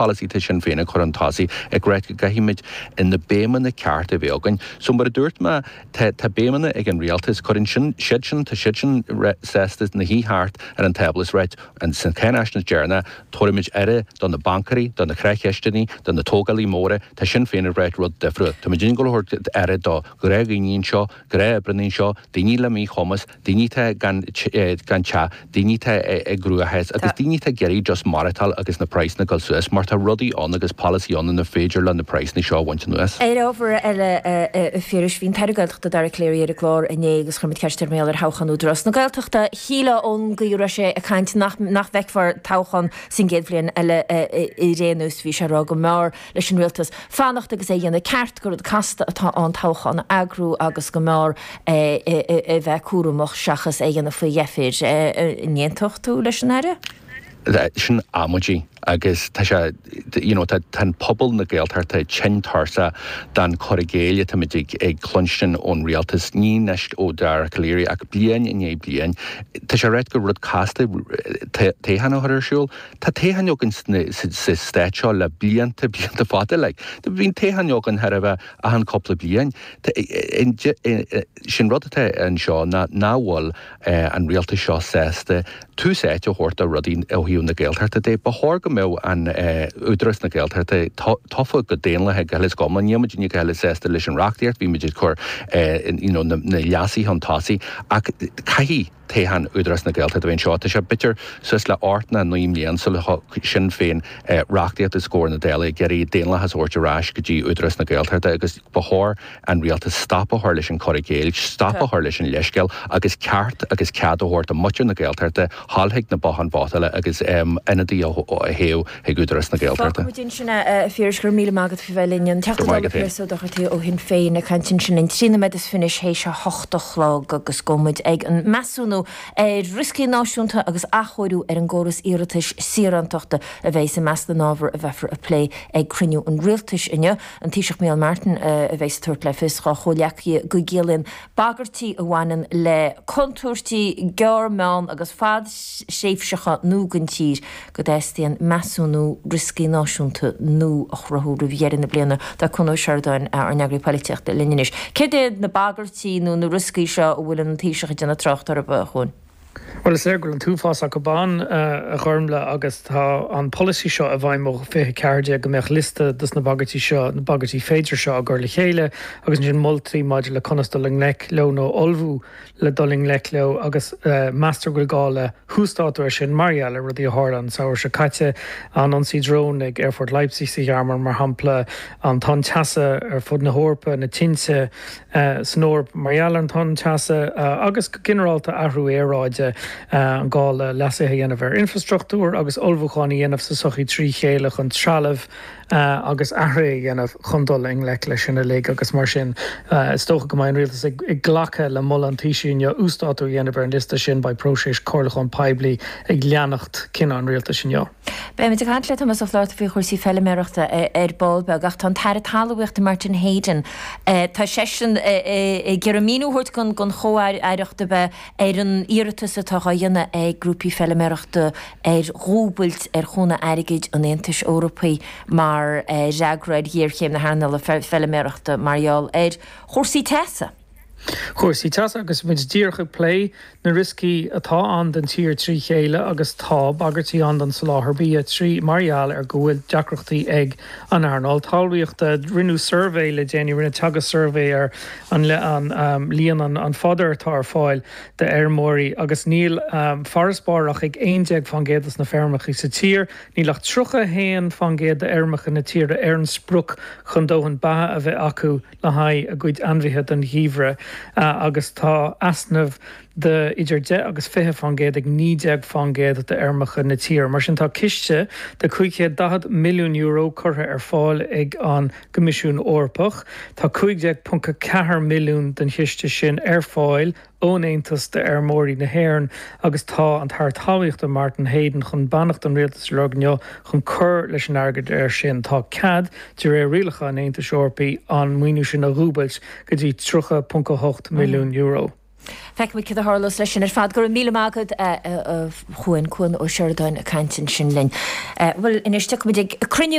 policy atá Sinn Féin a chur chun tosaigh ag ráit go gcaithfimid in na béimeanna ceart a bheith againn so mar a dúirt mé tá tá béimeanna ag an rialtas cuireann sin siad sin tá siad sin sásta ina suí thart ar an tábla is ráit ins an cáinaisnéis deireanach tabharfaimid aire do na baincéirí do na creach-chisteannaí do na tógálaí móra tá Sinn Féin ag ráit rud difriúil tá muid ag gabháil a thabhairt aire do ghnáthdhaoine anseo gnáthoibríonnaí anseo daoine le míchumas daoine atá gan teach, daoine atá i gcruachás agus daoine atá ag iarraidh just maireachtáil agus na praghsanna ag dul suas mar tá rudaí ann agus polasaithe ann inar féidir leo na praghsanna seo a bhaint anuas. Ar ábhar eile, a Phiarais, bhí an tAire Gaeltachta Dara Calleary ar an gclár inné agus chuir muid ceist air mar gheall ar thoghchán Údarás na Gaeltachta. Shílfeá ón gcaoi a raibh sé ag caint nach bhfeicfear toghchán sa gcéad bhliain eile ar aon nós, bhí sé ag rá go mb'fhearr leis an Rialtas fanacht agus é a dhéanamh ceart, gur rud casta atá ann toghchán a eagrú agus go mb'fhearr a bheith cúramach seachas é a dhéanamh faoi dheifir. An aontódh tú leis an Aire? Sin amaidí agus tá sé, you know, tá an pobal na Gaeltachta tinn tuirseach den cur i gcéill atáimid ag cluinstin ón Rialtas, ní anois ó Dara Calleary ach bliain i ndiaidh bliain. Tá sé ag ráit gur rud casta toghchán a chur ar siúl. Tá toghcháin againn sa Stát seo le blianta, blianta fada. Like, bíonn toghcháin againn chóir a bheith achan cúpla bliain. Sé'n rud atá anseo ná nach bhfuil an Rialtas seo sásta tús áite a thabhairt do rudaí ó thaobh na Gaeltachta de. Ba chóir go mbeadh an Údarás na Gaeltachta tofa go daonlathach go huile 's go hiomlán. Níl muidinne go huile sásta leis an reachtaíocht, bhí muid ag cur you know, na leasuithe chun tosaigh ach caithfidh, toghchán Údarás na Gaeltachta amach anseo. Tá sé b'fhéidir suas le ocht nó naoi mblian sul a thug Sinn Féin reachtaíocht os comhair na Dála ag iarraidh daonlathas a thabhairt ar ais go dtí Údarás na Gaeltachta agus ba chóir an Rialtas stop a chur leis an cur i gcéill, stop a chur leis an leithscéal agus ceart agus cead a thabhairt do mhuintir na Gaeltachta a ghabháil chuig na botháin vótála agus ionadaí a thoghadh. ag Údarás na Gaeltachta. Fágfaimid ansin é, a Phiarais, go raibh míle maith agat faoi bheith linn. An Teachta Dála Piaras Ó Dochartaigh ó Shinn Féin ag caint ansin. Trí nóiméad is fiche anois théis a hocht a chlog agus gabhfaidh muid ag an measúnú ar rioscaí náisiúnta agus athchóiriú ar an gcóras iarratais saorántachta a bheas i measc na n-ábhar a bheifear a phlé ag cruinniú an Rialtais inniu. An Taoiseach Micheál Martin a bheas ag tabhairt le fios dá chomhghleacaithe go gciallaíonn bagairtí a bhaineann le contúirtí gearr, meán agus fadthréimhseacha nua don tír, go dteastaíonn measúnú rioscaí náisiúnta nua a chruthú roimh dheireadh na bliana. Tá Cuan Ó Seireadáin, ár n-eagraí polaitíochta, linn anois. Céard iad na bagairtí nó na rioscaí seo a bhfuil an Taoiseach ag déanamh trácht orthu, a Chuain? Bhuel, is léir go bhfuil an t-uafás acu ann, a Ghormfhlaith, agus tá an polasaí seo i bhfeidhm ó 2014 go mbeadh liosta dos na bagairtí seo, na bagairtí féidir seo, á gcur le chéile agus ansin moltaí maidir le conas dul i ngleic leo nó ullmhú. le dul i ngleic leo agus meastar go bhfuil gá le huasdátú ar sin mar gheall ar rudaí a tharla an samhradh seo caite, an t-ionsaí dróin ag Aerfort Leipzig sa Ghearmáin, mar shampla, an tonn teasa ar fud na hEorpa, na tinte san Eoraip mar gheall ar an tonn teasa agus, go ginearálta, athrú aeráide, an gá le leasuithe a dhéanamh ar infreastruchtúr agus ullmhúcháin a dhéanamh sa tsochaí trí chéile chun trealamh a agus athruithe a dhéanamh chun dul i ngleic leis sin uilig agus mar sin is dócha go mbeidh an Rialtas ag glacadh le moladh an Taoisigh inniu uasdátú a dhéanamh ar an liosta sin. Beidh próiseas comhairliúcháin poiblí ag leanacht cinneadh an Rialtais inniu. Beimid ag caint le Tomás Ó Flaithearta faoi chúrsaí feiliméarachta ar ball beag ach tá an tAire Talmhaíochta Martin Heydon, tá seisean ag iarraidh míniú a thabhairt don Chomh-Aireacht a beidh Ar an iarratas atá á dhéanamh ag grúpaí feiliméarachta ar dhúbailt ar chúnamh airgid an Aontais Eorpaigh mar fhreagra ar ghéarchéim na hearnála feiliméarachta mar gheall ar chúrsaí teasa. Cúrsaí teasa agus muid díreach ag plé na rioscaí atá ann don tír trí chéile agus tá bagairtí ann don soláthar bia trí mar gheall ar go bhfuil deacrachtaí ag an earnáil talmhaíochta. Rinneadh suirbhé le déanaí, rinne Teagasc suirbhé ar an, leis an líon an fodar atá ar fáil d'fheirmeoirí agus níl farasbarr ach ag 11% sna feirmeacha sa tír. Níl ach 31% d'fheirmeacha na tíre ar an sprioc chun dóthain beatha a bheith acu le haghaidh a gcuid ainmhithe don gheimhreadh agus tá easnamh de idir 10 agus 20 faoin gcéad ag 19% d'fheirmeacha na tíre. Mar sin, tá ciste de €540 milliún curtha ar fáil ag an gCoimisiún Eorpach. Tá 15.4 milliún den chiste sin ar fáil ón Aontas d'fheirmeoirí na hÉireann agus tá an tAire Talmhaíochta Martin Heydon chun beannacht an Rialtais a lorg inniu chun cur leis an airgead air sin. Tá cead, de réir rialacha an Aontais Eorpaigh, an maoiniú sin a dhúbailt go dtí €30.8 milliún. Feicfimid cad a tharlós leis sin ar fad. Go raibh míle maith agat, a Chuain, Cuan Ó Seireadáin, ag caint ansin linn. Bhuel, anois tiocfaimid ag cruinniú.